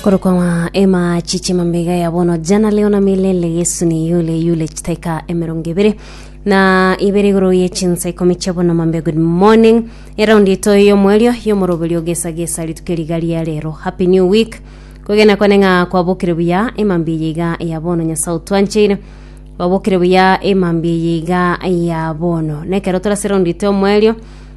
korokwa ng'a ema chiche mambega ya bono jana leo na milele yesu ni yule yule chitaika emerongo ibere na ibere igoro ye chinsa ikomi chia bono mambe good morning eraundi ito yomwerio yomoroberio gesa gesa rituke riga ria rero happy new week kogenda kwane ng'a kwabokire buya emambi eye iga ya bono nyasaye otwancheire babokire buya emambi eye iga ya bono nekero torase raundi ito yomwerio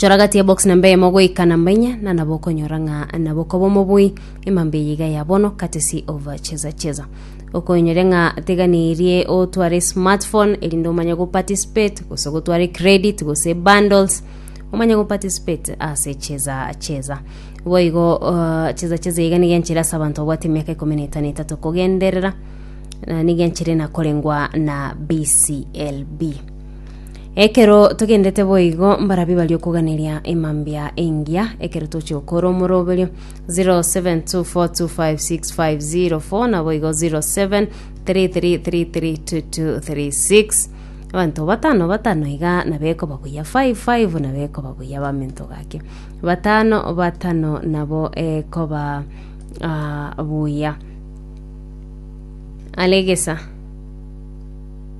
chora gati ya box namba eyemo goika namba inya na nabo okonyora ng'a nabo okoba omobui emambe eye iga ya bono katesi of cheza cheza okonyoria ng'a teganirie otware smartphone erinde omanye goparticipate gose gotware credit gose bundles omanye goparticipate ase cheza cheza boigo uh, cheza cheza iga niga enchera ase abanto babwate emiaka ikomi na etano etato kogenderera na niga enchera enakorengwa na bclb Ekero togendete boigo mbarabio bari okoganeria emambia engiya ekero toche okora omoroberio 0724256504 naboigo 0733332236 abanto batano batano iga nabekoba buya 55 nabekoba buya bamento gake batano batano nabo ekoba ah, buya alegesa